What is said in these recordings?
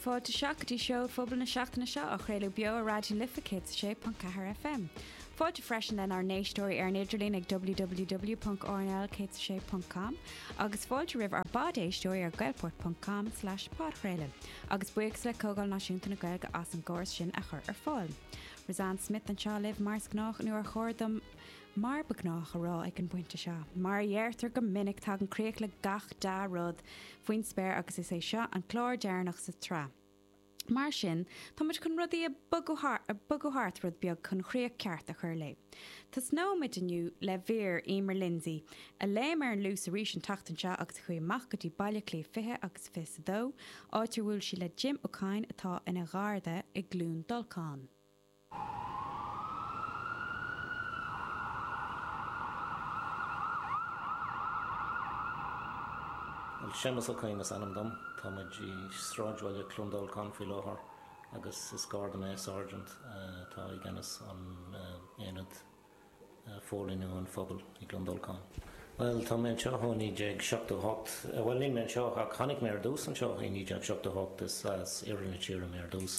Fáilte isteach go dtí Seó Phobail na seachtaine seo á chraoladh beo ar Raidió na Life 106.4 FM. Fáilte freisin lenár n-éisteoirí ar an idirlíon ag www.rnl106.com agus fáilte roimh ár bpod-éisteoirí ar gaelport.com/podchraoladh agus buíochas le Comhdháil Náisiúnta na Gaeilge as an gcóras sin a chur ar fáil. Roseanne Smith anseo libh mar is gnách nó ar chóir dom Mar ba ghnách a rá ag an bpointe seo, mar a deirtear go minic, tagann críoch le gach dea-rud faoin spéir agus is é seo an clár deireanach sa tsraith. Mar sin, táimid chun rudaí a bhogadh thart rud beag chun chríoch ceart a chur léi. Tosnóimid inniu le mír Emer Lindsay, a léim ar an Luas arís an tseachtain seo agus a chuaigh amach go dtí Baile Átha Cliath 20 agus 20 is a 2, áit ar bhuail sí le Jim Ó Cadhain atá ina gharda i gCluain Dolcáin. Bhuel, Séamas Ó Cadhain is ainm dom. Tá muid i sráidbhaile Cluain Dolcáin faoi láthair agus is garda mé, sergeant, atá i gceannas an aonad Póilíniú an Phobail i gCluain Dolcáin. Bhuel, tá mé anseo ó 1978. Bhuel, níl mé anseo ach tháinig mé ar dtús anseo i 1978, is as Iarthar na Tíre mé ar dtús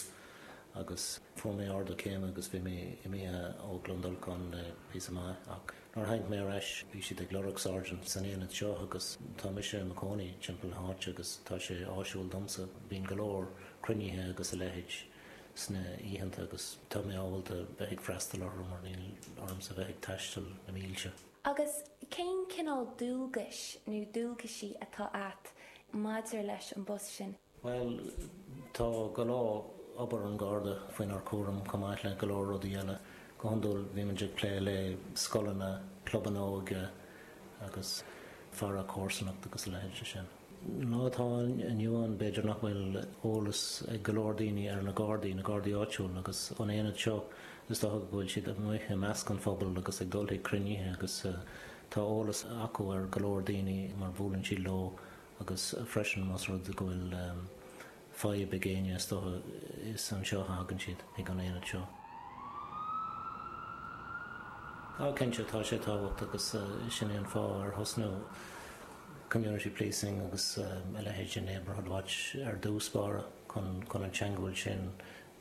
agus fuair mé ardú céime agus bhí mé imithe ó Chluain Dolcáin le píosa maith ach nuair a tháinig mé ar ais, bhí siad ag lorg sergeant san aonad seo agus tá mise i mo chónaí timpeall na háite agus tá sé áisiúil domsa, bíonn go leor cruinnithe agus a leithéid. sna oícheanta agus tá mé ábalta bheith ag freastal orthu mar níl ormsa bheith ag taisteal na mílte. Agus cén cineál dualgais nó dualgaisí atá a't maidir leis an bpost sin? Bhuel, tá go leor obair an Gharda faoinár cúram, chomh maith le go leor rudaí eile. Go hiondúil bíonn muid ag plé le scoileanna, clubanna óige agus faire comharsanacht agus a leithéid de sin. Lá atá inniu ann, b'fhéidir nach bhfuil eolas ag go leor daoine ar na Gardaí, na Gardaí áitiúil agus an aonad seo. Is dócha go bhfuil siad amuigh i measc an phobail agus ag dul chuig cruinnithe agus tá eolas acu ar go leor daoine mar buaileann siad leo agus freisin más rud go bhfuil fadhb ag éinne, is dócha. Is anseo a thagann siad, ag an aonad seo. Á, cinnte, tá sé tábhachtach agus sin é an fáth ar thosnaigh community policing agus a leithéid de neighbourhood watch ar dtús báire, chun an teagmháil sin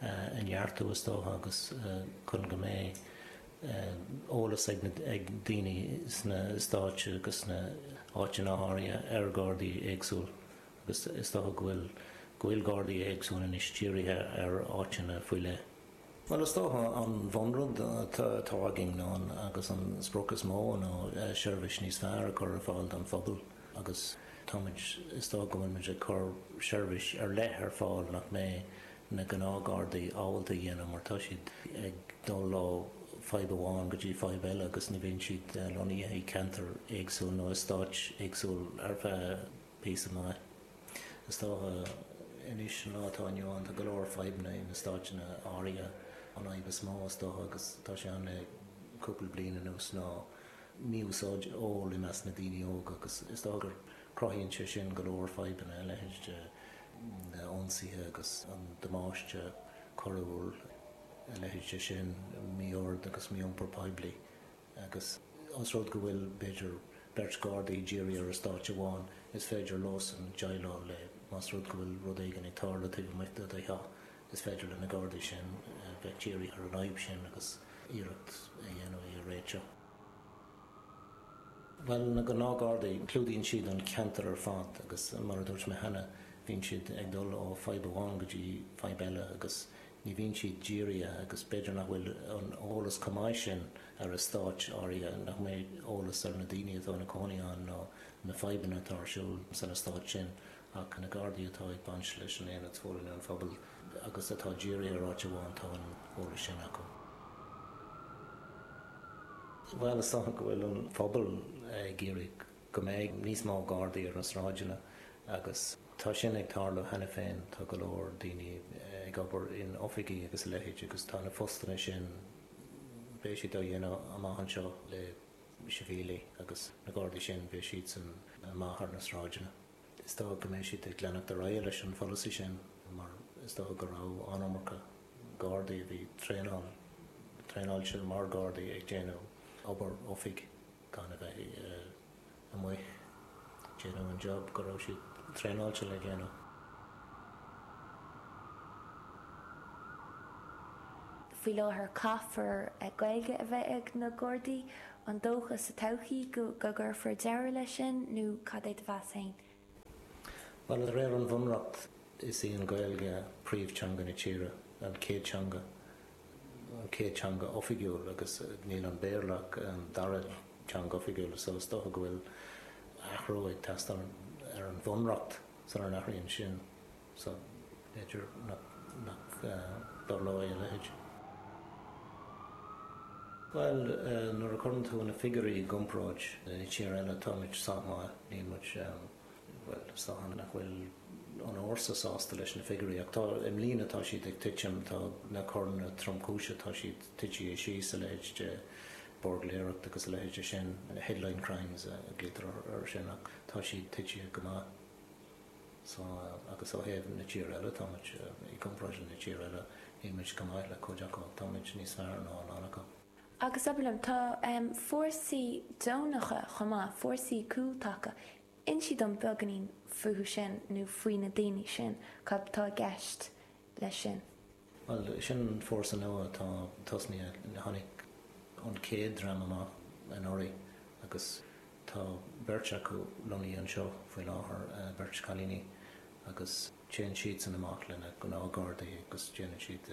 a neartú, is dócha, agus chun go mbeidh eolas ag daoine sna heastáit agus sna háiteanna áirithe ar Ghardaí éagsúil. Is dócha go bhfui- go bhfuil Gardaí éagsúil anois dírithe ar áiteanna faoi leith. Bhuel, is dócha an bhunrud atá againn ná, agus an sprioc is mó, ná seirbhís níos fearr a chur ar fáil don phobal agus táimid, is dócha go bhfuilimid ag cur seirbhís ar leith ar fáil nach mbeidh na gnáth-Ghardaí ábalta a dhéanamh mar tá siad ag dul ó fadhb amháin go dtí fadhb eile agus ní bhíonn siad lonnaithe i gceantair éagsúil nó eastáit éagsúil ar feadh Píosa maith, is dócha. Anois, an lá atá inniu ann, tá go leor fadhbanna in eastáiteanna áirithe. An fhadhb is mó, is dócha, agus tá sé ann le cúpla bliain anuas, ná mí-úsáid óil i measc na daoine óga, agus is dócha gur cruthaíonn sé sin go leor fadhbanna, a leithéid de na ionsaithe agus an damáiste coiriúil, a leithéid de sin, mí-ord agus mí-iompar poiblí. agus os rud go bhfuil, b'fhéidir, beirt Ghardaí dírithe ar eastát amháin, is féidir leosan deighleáil le, más rud go bhfuil rud éigin ag tarlú taobh amuigh de do theach, is féidir le na Gardaí sin bheith dírithe ar an fhadhb sin agus iarracht a dhéanamh í a réiteach. Bhuel, na gnáth-Ghardaí, clúdaíonn siad an ceantar ar fad agus, mar a dúirt mé cheana, bíonn siad ag dul ó fadhb amháin go dtí fadhb eile agus ní bhíonn siad dírithe agus b'fhéidir nach bhfuil an t-eolas chomh maith sin ar eastáit áirithe, nach mbeidh eolas ar na daoine atá ina gcónaí ann ná na fadhbanna atá ar siúl san eastát sin ach na Gardaí atá ag baint leis an Aonad Forlíonadh an Phobail agus atá dírithe ar áit amháin, tá an t-eolas sin acu. Bhuel, is dócha go bhfuil an pobal ag iarraidh. go mbeidh níos mó Gardaí ar na sráideanna agus tá sin ag tarlú cheana féin, tá go leor daoine ag obair in oifigí agus a leithéid agus tá na postanna sin, beidh siad á dhéanamh amach anseo le sibhialaigh agus na Gardaí sin, beidh siadsan amuigh ar na sráideanna. Is dócha go mbeidh siad ag leanacht ar aghaidh leis an pholasaí sin mar is dócha go raibh an iomarca Gardaí a bhí traenáilte mar Ghardaí ag déanamh obair oifige. gan a bheith amuigh ag déanamh an job go raibh siad traenáilte le déanamh. Faoi láthair caithfear Gaeilge a bheith ag na Gardaí. An dócha sa todhchaí go gcuirfear deireadh leis sin nó cad é do mheas féin? Bhuel, de réir an Bhunreacht, is í an Ghaeilge príomh-teanga na tíre, an chéad teanga, an chéad teanga oifigiúil agus níl an Béarla ach an dara teanga oifigiúil so is dócha go bhfuil athrú ag teastáil ar an Bhunreacht sula n-athraíonn sin. so b'fhéidir nach dtarlóidh a leithéid. Bhuel, nuair a chuireann tú na figiúirí i gcomparáid le tír eile, táimid sách maith. Níl muid, bhuel, sách ann nach bhfuil an fhórsa sásta leis na figiúirí. Ach tá, i mbliana tá siad ag titim, tá na coireanna tromchúise, tá siad titithe síos, a leithéid de buirgléireacht agus a leithéid sin, headline crimes a ghlaoitear air sin, ach tá siad titithe go maith. So, agus ó thaobh na tír eile, tá muid, i gcomparáid le na tír eile, táimid chomh maith le cuid acu, táimid níos fearr ná a lán acu. Agus, abair liom, tá fórsaí deonacha chomh maith, fórsaí cúltaca, insí dom beagainín fúthu sin nó faoi na daoine sin, cad tá i gceist leis sin? Bhuel, sin an fórsa nua atá tosnaithe. Tháinig an chéad dream amach anuraidh agus tá beirt acu lonnaithe anseo faoi láthair, beirt chailíní, agus téann siadsan amach leis na gnáthghardaí agus déanann siad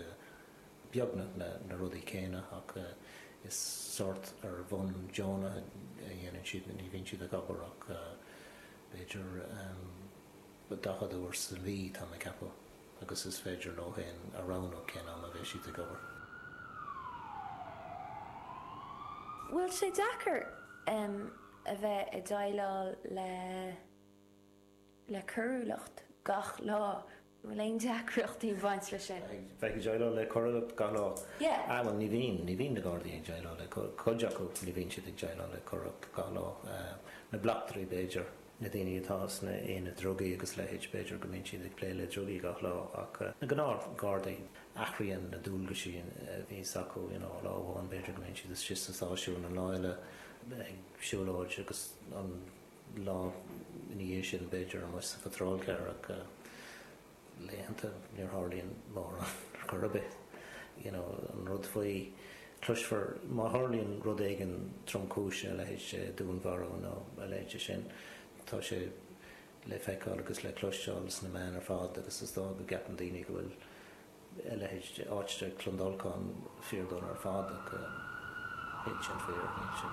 beagnach na rudaí céanna ach is sórt ar bhonn deonach a dhéanann siad, ní bhíonn siad ag obair ach b'fhéidir daichead uair sa mhí, táim ag ceapadh. agus is féidir leo féin a roghnú cén am a bheidh siad ag obair. bhfuil sé deacair a bheith ag déileáil le le coiriúlacht gach lá? bhfuil aon deacrachtaí ag baint leis sin? a bheith ag déileáil le coiriúlacht gach lá? yeah. ah bhuel ní bhíonn, ní bhíonn na gardaí ag déileáil le, cuid acu ní bhíonn siad ag déileáil le coiriúlacht gach lá, na bleachtairí b'fhéidir. na daoine atá sna aonaid drugaí agus a leithéid, b'fhéidir go mbíonn siad ag plé le drugaí gach lá ach na gnáthghardaí, athraíonn na dualgaisí a bhíos acu, you know, lá amháin b'fhéidir go mbíonn siad istigh sa stáisiún, an lá eile ag siúlóid agus an lá ina dhiaidh sin b'fhéidir amuigh sa patrol car ach, laethanta, ní tharlaíonn mórán ar chor ar bith. You know, an rud faoi, cloisfear, má tharlaíonn rud éigin tromchúise, a leithéid de dúnmharú nó a leithéid de sin, tá sé le feiceáil agus le cloisteáil sna meáin ar fad agus is dóigh go gceapann daoine go bhfuil a leithéid de áit de Clondalkin fíordhona ar fad ach níl sin fíor, níl sin.